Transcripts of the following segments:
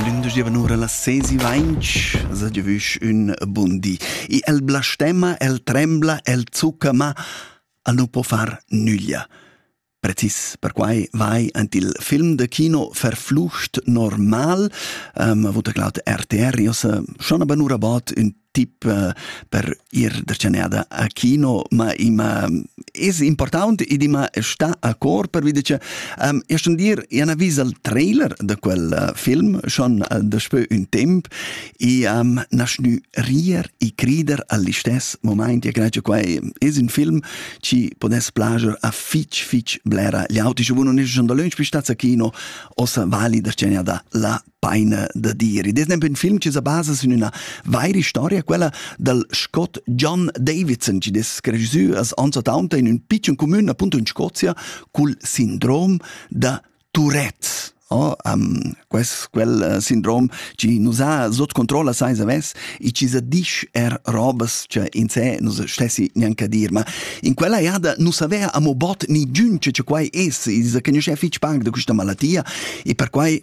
Lündesch giovanura las ses e vainch sa giavüsch ün bun di. I el blastema, el trembla, el zucca, ma el nu po far nüglia. Precis perquai vai ant il film de kino Verflucht normal, ähm, wo der glaut RTR, iossa schon aber nur about ün tip eh, per ir da Cenada a kino, ma ima es important ed ima sta a cor per vide che um, e schon dir ina vis al trailer da quel uh, film schon uh, da spö un temp e um, nas nu rier e crider all'istes moment ja gnace quai es un film ci podes plager a fitch fitch blera gli auti schon non es schon da lunch bis sta a kino ossa vali da Cenada la paina da dire. Ed esempio in film che sa basa su una vera storia, quella del Scott John Davidson, che des regisseur as anzatanta in un piccolo comune, appunto in Scozia, col sindrom da Tourette. Oh, um, quest, quel uh, sindrom ci nos ha sot controlla sai saves e ci sa disch er robas che in se nos stessi neanche dir ma in quella jada nu savea amo bot ni giun che quai es e sa conosce fitch pag da questa malattia e per quai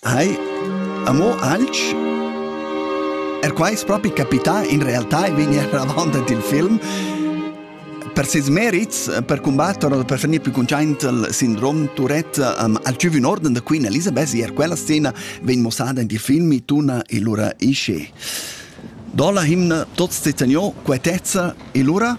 Hai, amo alch? Er qua es propi capità, in realtà il vegner avant il film per ses merits per combattere oder per finir più conciaint il sindrom Tourette um, al giù un orden da Queen Elizabeth er quella scena vegn mossada in die filmi tuna e lura isce. Do la himna tots te tenio quetezza e lura?